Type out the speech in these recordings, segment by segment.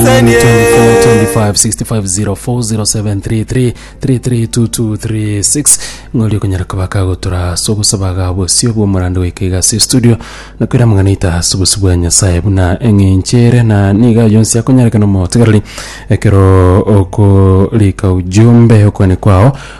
242565407333332236 ng'ori okonyara kobaka gotora ase obosaba ga bosio bw'omorando goika iga ase estudio na koira amang'ana aito ase obosio bwa nyasae buna eng'enchere na niga ayo onsi akonyarekana omotigareri ekero okorika ujumbe okwane kwao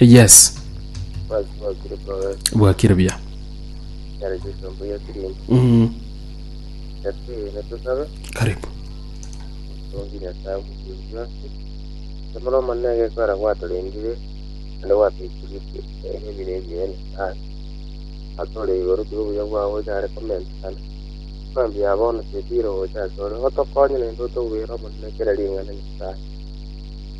Yes. Basi bakire probe. Bwakire bia. Yare Jesu mbu yasirinde. Mm. Yasi netusabe. Karibu. Tongi nyasaye mukuru yose. Samara manege kwara gwatorendire. Ande gwatwikiri ebire ebire. Ah. Atore igoro tubuya bwawo yare comment sana. Mambi abono tetiro ocha sore. Otokonye nende otobwira omonene kera ringana nyasaye.